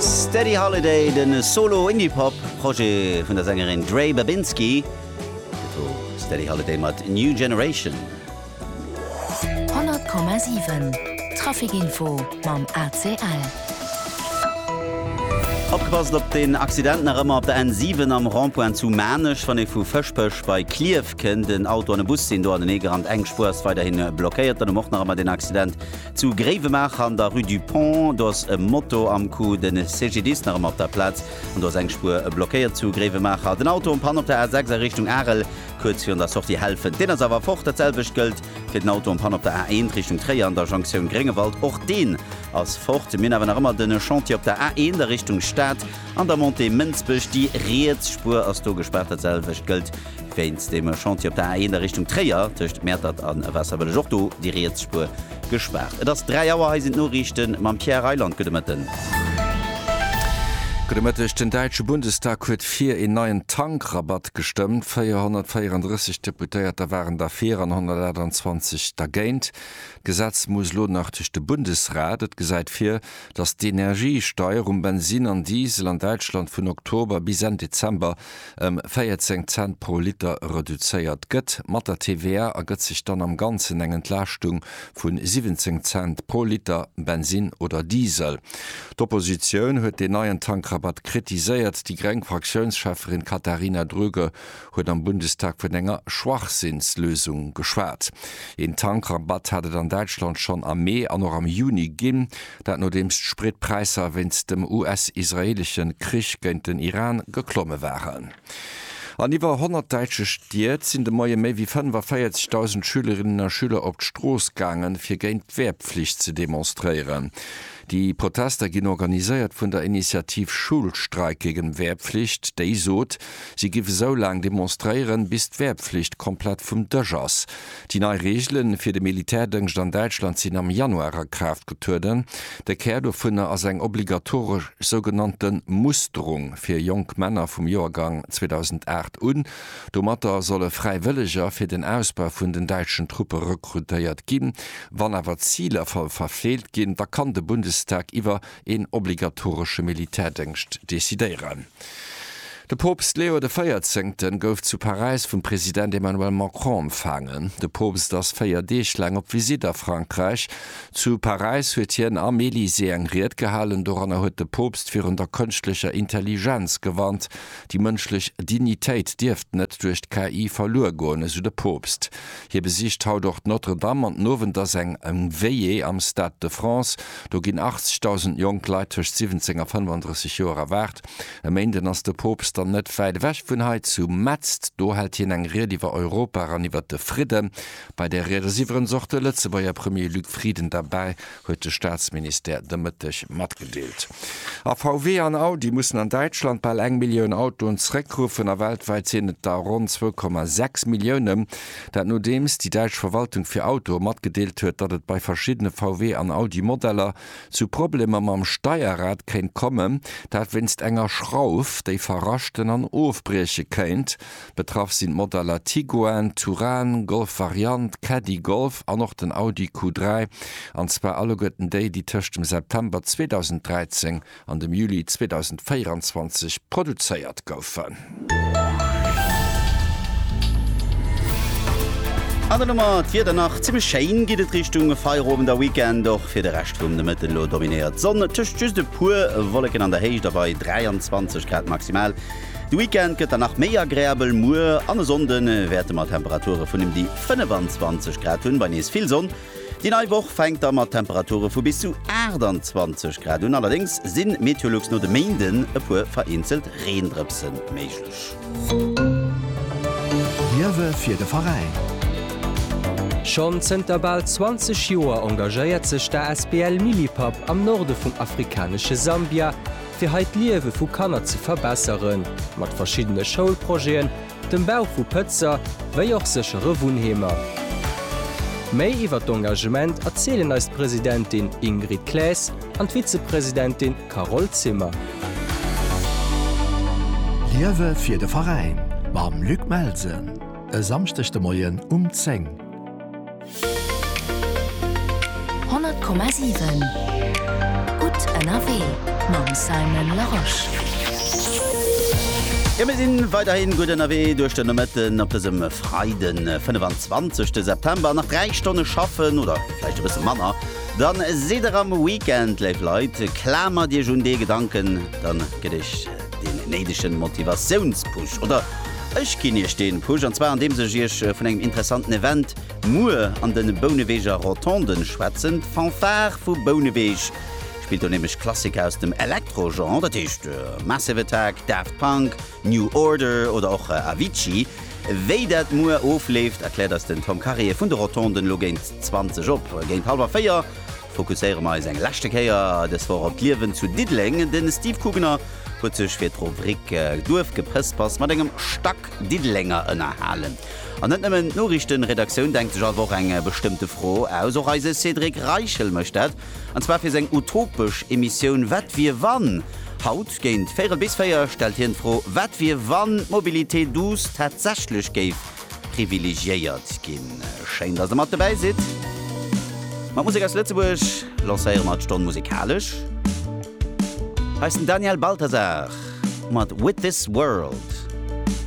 Steady Holiday, de Solo-Indie-Pop Projet vun der Sängerin Dre Babinski. Dat wor Steady Holiday mat New Generation. 100,7 Trafic-Info mam ACL. Opgepasst op den Accident nach ëmmer op der N7 am Rond-point zu Maarnech. Wann ee vu Fëschbech bei Klierf kënnt, en Auto an e Bus sinn do aneneegerannt. Eng Spuer ass weiderhi blockéiert. Dann um och nach ëmmer den Accident Zu Gréiwemaacher an der Rue du Pont, do ass e Moto am Coup, de CGDIS nach ëmmer op der Plaz an do ass eng Spuer blockéiert zu Gréiwemaacher. Den Auto en Panne op der A6 a Richtung Arel, kuerz virun der Sortie Helfent, deen ass awer fort. Dat selwecht gëllt fir den Auto en Panne op der A1 Richtung Tréier an der Jonktioun Gréngewald, och deen ass fort. Mir hunn awer nach ëmmer de Chantier op der A1 a Richtung Stad an der Montée Mënsbech, déi riets Spuer ass do gespaart. Dat selwecht gëllt Wéinst dem Chantier op der A 1 a Richtung Tréier tëscht Mäertert a Waasserbëlleg ass och do déi riets Spuer gespaart. Et ass 3 Auer, hei sinn d'Noriichte mam Pierre Reyland. Gudde Mëtten. Gudde Mëtteg. Den däitsche Bundestag huet fir een neien Tankrabatt gestëmmt. 434 Deputéierter waren derfir an 128 dergéint. D'Gesetz muss elo nach duerch de Bundesrat. Et gesäit vir, datt d'Energiesteier um Bensinn an Diesel an Däitschland vun Oktober bis Enn Dezember ëm 14 Cent pro Liter reduzéiert gëtt, mat der TVA ergëtt sech dann am Ganzen eng Entlaaschtung vu 17 Cent pro Liter Bensinn oder Diesel. D'Oppositioun huet deen neien Tankrabatt kritiséiert. Déi gréng Fraktiounsschäfferin Katharina Dröge huet am Bundestag vun enger Schwachsinnslösung geschwat. Een Tankrabatt hat et an Däitschland schonn am Mee an och am Juni ginn. Dat nodeems d'Spritpräisser wéinst dem US-israeelesche Krich géint den Iran geklomme waren. An iwwer 100 däitsche Stied sinn de Moie méi wéi 45.000 Schülerinnen a Schüler op d'Strooss gaangen, fir géint d'Wehrpflicht ze demonstréieren. Déi Protester ginn organiséiert vun der Initiativ Schulstreik gegen Wehrpflicht, déi sot, si giff esou laang demonstréieren, bis d'Wehrpflicht komplett vum Dësch ass. Déi nei Reegele fir de Militärdëngscht an Däitschland sinn am Januar a Kraaft getrueden. De Kär dovunner ass eng obligatoresch sougenannte Musterung fir jonk Männer vum Joergang 2008 un. Domatter solle Fräiwëlleger fir den Ausbau vun den däitschen Truppe rekrutéiert ginn. Wann awer d'Ziler verfeelt ginn, da kann de Bundestag iwwer een obligatoresche Militärdëngscht decidéieren. De Poopst Leo de Véierzéngten gouf zu Paräis vum President Emmanuel Macron empfaangen. De Poopst ass véier Deeg laang op Visitt a Frankräich. Zu Paräis huet hien am Elysée eng Ried gehalen. Doranner huet de Poopst virun der kënschtlecher Intelligenz gewarnt. Déi mënschlech Dignitéit dierft net duerch d'KI verluer goen, esou de Poopst. Hie besicht haut och d'Notre Dame an den Owend ass eng Veillée am Stade de France. Do ginn 80.000 jonk Leit tëscht 17 a 35 Joer erwaart. E Méinden ass de Poopst dann net wäit ewech vun hei zu Metz. Do hält hien eng Ried iwwer Europa an iwwer de Fridden. Bei där Ried ass iwwerens och de Lëtzebuerger Premier Luc Frieden derbäi. huet de Staatsministère de Mëtteg matgedeelt. A VW an Audi mussen an Däitschland bal eng Millioun Autoen zeréckruffen a weltwäit sinn et der ronn 2,6 Milliounen. Dat nodeems déi däitsch Verwaltung fir Autoe matgedeelt huet, datt et bei verschiddene VW an Audi Modeller zu Problemer mam Steierrad kéint kommen. Dat wéinst enger Schrauf, déi verraschten an ofbrieche kéint. Betraff sinn d'Modeller Tiguan, Touran, Golf Variant, Caddy Golf an och den Audi Q3, an zwar alleguerten déi, déi tëscht dem September 2013 an dem Juli 2024 produzéiert goufen. An der Nummer d'Wieder, Nach zimmlech schéin geet et Richtung Feierowend a Weekend. Och fir de Rescht vum Nomëtten elo dominéiert d'Sonn, tëscht just e puer Wolleken an der Héicht a bei 23 Grad maximal. De Weekend gëtt dann nach méi agreabel, muer an e Sonnde wäerte mer Temperature vun ëm déi 25 Grad hunn, bei nees vill Sonn. Déi nei Woch fänkt da mat Temperature vu bis zu 28 Grad un, allerdéngs si Meteolux no de Méinden e puer vereenzelt Reendrëpse méiglech. Liewe fir de Veräin! Schonn zënter bal 20 Joer engagéiert sech d'ASBL Milipapp am Norde vum afrikanesche Sambia, fir hei d'Liewe vu Kanner ze verbesseren, mat verschiddene Schoulprojeten, dem Bau vu Pëtzer, wéi och séchere Wunnheemer. Méi iwwer d'Engagement erzielen eis d'Presidentin Ingrid Claes an d'Vizepresidentin Carole Zimmer. Liewe fir de Veräin mam Luc Melsen e Samschdeg de Moien um 10. Honnert Komma siwen Gutt ënnerwee mam Simon Larosche. Jo mir sinn weiderhin gutt ënnerwee duerch den Nomëtten op dësem Freiden 25 September. Nach 3 Stonne schaffen oder vläicht e bësse manner dann sidd der am Weekend. Léif Leit klamert iech un dee Gedanken dann gëtt iech deen néidegen Motivatiounspush oder ech ginn iech deen Push an zwar andeems ech iech vun engem interessanten Event Muer an den Bouneweger Rotonden schwätzen d'Fanfare vu Bouneweg. Spillt do nämlech Klassiker aus dem Elektro-Genre, dat heescht Massive Attack, Daft Punk, New Order oder och Avicii. Wéi dat muer ofleeft, erkläert eis den Tom Carrier vun de Rotonden elo géint 20 op. Géint hallwer 4 fokusséiere mer eis eng leschte Kéier des Woch op d'Liewen zu Diddeleng. De Steve Kugener huet sech fir d'Rubrik Duerfgeprëspers mat engem Stack Diddelenger ënnerhalen. An net nëmmen d'Noriichtenredaktioun denkt sech all Woch eng bestëmmte Fro aus, och eise Cédric Reichel mécht dat, an zwar fir seng utopesch Emissioun Wat wier wann? Haut géint véirel bis véier stellt hien d'Fro, Wat wier wann d'Mobilité douce tatsächlech géif privilegiéiert ginn? Schéin, dass der mat dobäi sidd. Mat Musek aus Lëtzebuerg lancéiere mer d'Stonn musekalesch. Hei ass den Daniel Balthazar mat With This World.